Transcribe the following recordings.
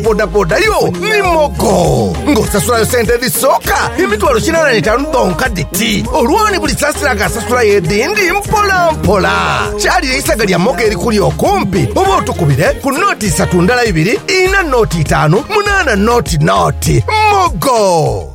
bodaboda yo ni mogo ng'osasulayo sente edhisooka emitwalo kinaana n'etaanu dhonka dhiti olwoni buli saasira ng'asasulayo edhindi mpolampola. Kyalire eisaga lya mogo erikuli okumpi oba otukubire ku nooti isatu ndala ibiri, ina nooti itaanu, munaana nooti nooti. Mogo!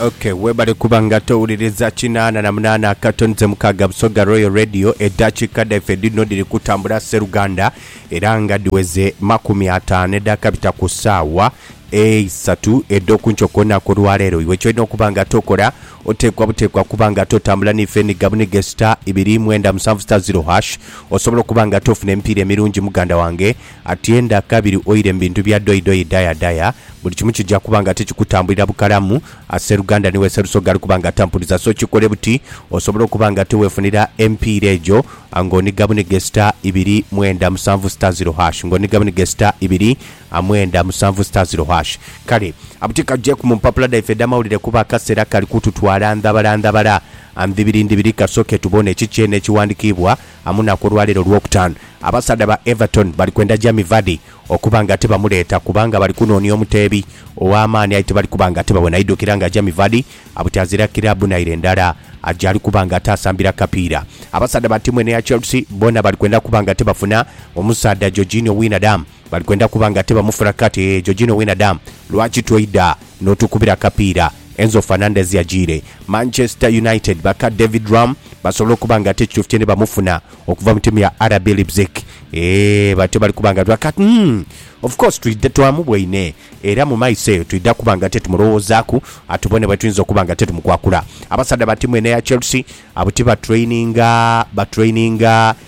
Okay, webale kuba nga towuliriza kinaana na munaana akatonze mukaaga Busoga Royal Radio eddakiika dhaife dhino dhiri kutambula sseruganda era nga dhiweze makumi ataano eddaaka bita ku ssaawa eisatu edh'okunkyo kwona kw'olwaleero iwe kyolina okuba nga tokola Oteekwa buteekwa okuba nga ate otambula n'ife enhiga bunhiga e sita ibiri mwenda musanvu sita ziro hash. Osobola okuba nga ate ofuna emipiira emirungi muganda wange. Atienda kabiri oire mu bintu bya dhoyi dhoyi daya daya. Buli kimu kija kuba nga ate kikutambulira bukalamu. A Sseruganda ni we Sserusoga ali kuba nga ate ampuliza. So kikole buti osobole okuba nga ate weefunira emipiira egyo ng'onhiga bunhiga e sita ibiri mwenda musanvu sita ziro hash. Ng'onhiga bunhiga e sita ibiri a mwenda musanvu sita ziro hash. Kale abuti kajeku mu mpapula dhaife edh'amawulire kuba akaseera kali kututwala ndhabala ndhabala. A Ndhibiri ndhibiri kasooke tubone ki kyene ekiwandikiibwa amunaku olwaleero Lwokutaanu. Abasaadha ba Everton bali kwenda Jamie Vardy okuba nga tibamuleeta kubanga bali kunoonia omuteebi ow'amaani aye tibali kuba nga tibabona. Idhukira nga Jamie Vardy abuti azira kiraabu naire ndala gyali kuba nga ate asambira kapiira. Abasaadha ba tiimu eno eya Chelsea boona bali kwenda kuba nga tibafuna omusaadha Georginio Wijnadum. Bali kwenda kuba nga tibamufura kati eeh Georgino Wijnadum lwaki toida notukubira akapiira Enzo Fernandez yajiire Manchester United baka David Raum basobola okuba nga ate ekituufu kye nibamufuna okuva mu tiimu ya RB Leipzig eeh batyo bali kuba nga kati umm of course twidha twamubwaine era mu maiso eyo twidha kuba nga ate tumulowoozaku atubone bwetuyinza okuba nga ate tumukwakula Abasaadha ba tiimu eno eya Chelsea abo tibatraininga batraininga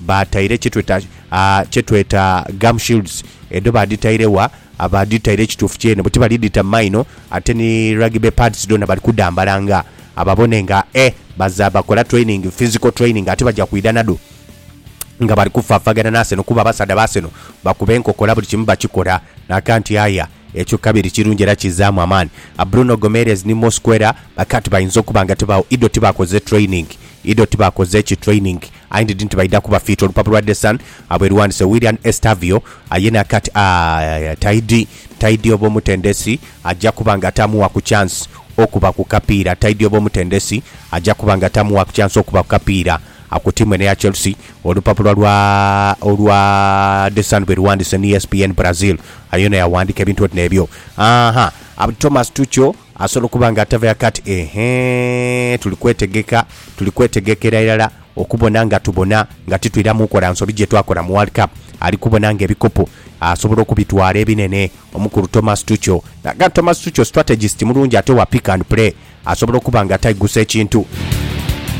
Baataire kye tweta kye tweta gum shields. Edho baadhitaire wa? Abaadhitaire ekituufu kyene bwe ti bali dhita mu maino. Ate ni rugby pads dhoona bali kudhambala nga ababone nga e baza bakola training, physical training ate baja kwidha nadho nga bali kufaafagana n'Arsenal kuba abasaadha ba Arsenal bakuba enkokola buli kimu bakikola. Naakaa nti aye ekyo kabiri kirungi era kizaamu amaani. Bruno Gomeres ni Mosquera bakaa nti bayinza okuba nga tibagho idho tibaakoze training, idho tibaakoze ki training I ndid nti baidha kuba fiiti olupapu lwa The Sun abwe luwandise Willian Estavio aye na kati aah Taidi Taidi oba omutendesi aja kuba nga tamuwa ku chance okuba ku kapiira Taidi oba omutendesi aja kuba nga tamuwa ku chance okuba ku kapiira Ku tiimu eno eya Chelsea olupapula lwa olwa The Sun bwe luwandise ni ESPN Brazil aye ono yawandika ebintu oti nebyo aah Thomas Tuchel Asobola okuba nga atava yaka ati, Eehee, tuli kwetegeka, tuli kwetegekera irala okubona nga tubona nga titwiramu kola nsobi gye twakola mu World Cup. Ali kubona nga ebikopo asobola okubitwala ebinene. Omukulu Thomas Tuchel n'aga nti Thomas Tuchel strategist mulungi ate wa pick and play, asobola okuba nga ataigusa ekintu.